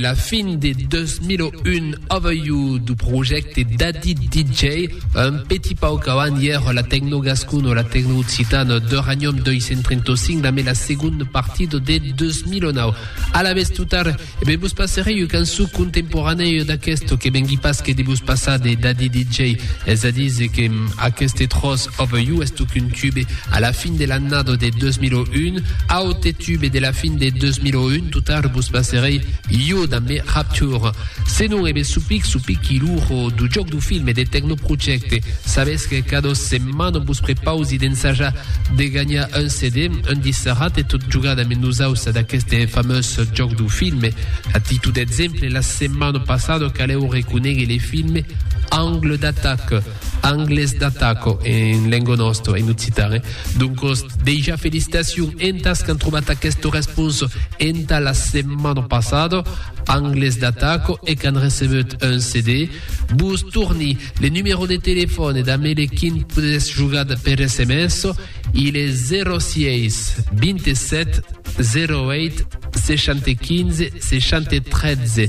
La fin de 2001 aveiu du projècte Daddy DJ, un petit pauc avant ièr la Tecno Gascon o la Tecno Occitan d'Uranium 235 la mena segon partida de 2009. A la vez tutar, e ben vos passerei u cançó contemporanèu d'aquesto que vengui pas que de vos passar de Daddy DJ, es a dir que aqueste tròç aveiu estoc un tube a la fin de l'annada de 2001, aote tube de la fin de 2001 tout tard vos passerei io da me rapture se non eve supic supic qui l'uro du joc du film e de tecnoprojecte sabes que cada setmana vos prepausi d'ensajar de gagnar un CD un disserat e tot jugar da me nosausa d'aqueste famós joc du film a títol d'exemple la setmana passada caleu reconègue le film angle d'attaque Angles d'ataco en lengo nosto, en occitan. Eh? Doncos, deja felicitacion entas qu'an trobat aquesto respons enta la setmana passada, Angles d'ataco, e qu'an recebut un CD. Vos torni le numero de telefòn e damé le quin podes jugat per SMS, il e 06 27 08 60 15 60 13.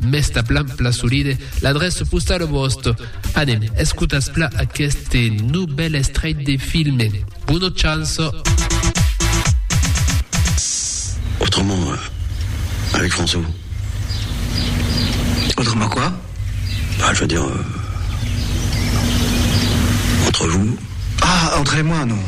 Mès ta plan pla solide l'adresse postale vòste. Anem, escotas pla aqueste nobel estreit de filme. Bona chance! Autrement, euh, avec François. Autrement quoi Bah, je veux dire. Euh, entre vous. Ah, entre moi, non.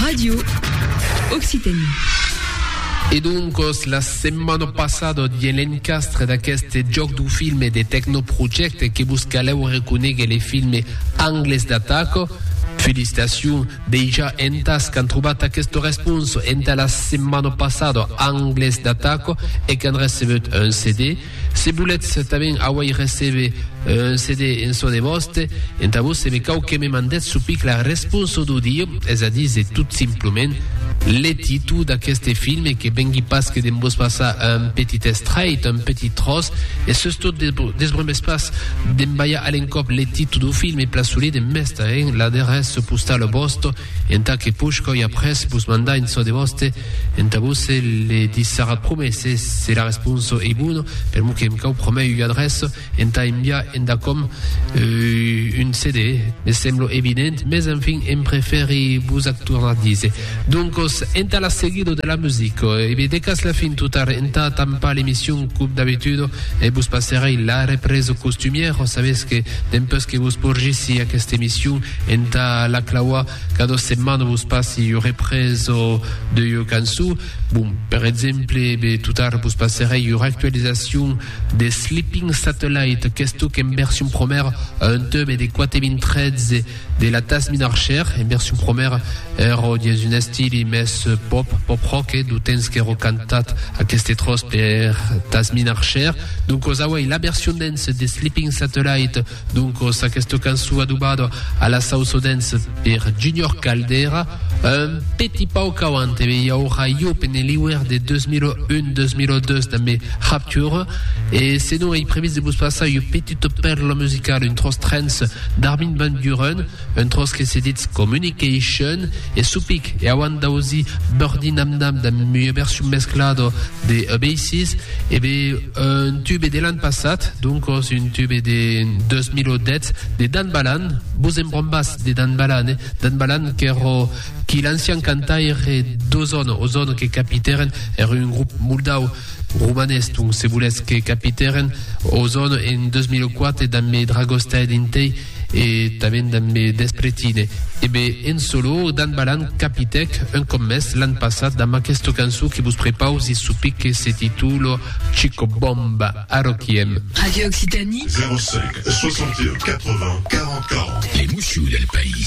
Radio Occitanie. E doncos, la setmana passada diguè l'encastre d'aqueste jòc du filme de Tecnoprojecte que vos calèu reconéguer le filme Angles d'ataca. Felicitacions dejà entàs qu'an trobat aquesta responsa entà la setmana passada Angles d'ataca e qu'an recebut un CD. Se volètz tanben auei recebe un CD en çò de vòste, entà vos se me cau que me mandètz çò pic la responso d'audio, es a díser tot simplament le títol d'aqueste film e que vengui pas que de'n vos passar un petit estrait, un petit tròç, e sustot desbromètz pas d'embalhar a l'encòp le títol dau film e plaçolé de mestre'n l'adreça postala vòsta. Entà que push coi après vos mandar en çò de vòste, entà vosse le dissara prumè se se la responso ei bona, per mo que em cau promè ua adreça entà enviar enda com un CD, me semblo evident, mes enfin em prefèri vos ac tornar díser. Doncos, entà la seguida de la musica, e be decàs la fin total entà tampar l'emission cub d'abituda, e vos passerei la represa costumièra, sabètz que dempus que vos porgissi aquesta emission, Entà la clauar qu'a dos setmanas vos passi ua represa de ua cançó. Bon, per exemple, be totara vos passerèi ua actualizacion de Sleeping Satellite, qu'es toc en version promèra a un tube de 4013 de la Tasmin Archer, en version promèra ero dins un estili mès pop, pop rock, eh, dau temps qu'ero cantat aqueste tròç per Tasmin Archer. Doncos auèi la version dance de Sleeping Satellite, Doncos, aquesta cançon adobada a la sauça dance per Junior Caldera, un petit pauc qu'auant e i aurà iop en Eliwer de 2001-2002 damb Rapture, e senon ei previst de vos passar ua petita pèrla musicala, un tròç trance d'Armin van Buuren, Un tròç que se ditz Communication e su pic e auant d'ausi Birdie Nam Nam damb ua version mesclada de Oasis, e be un tube de l'an passat, doncos un tube de 2010 de Dan Balan, vos en brombàs de Dan Balan, eh? Dan Balan qu'èra qui l'ancian cantaire d'Ozone, Ozone que capitèren, èra un grop moldau, romanés donc se volètz, que capitèren Ozone en 2004 damb Dragostea dintei, E tanben damb me despretine. E be, en solo, Dan Balan capitèc un còp mès l'an passat damb aquesta cançon que vos prepausi sopic que se titula Chico Bomba. Arroquiem. Radio Occitanie. 05 61 80 40 40. Les Mouschoux del País.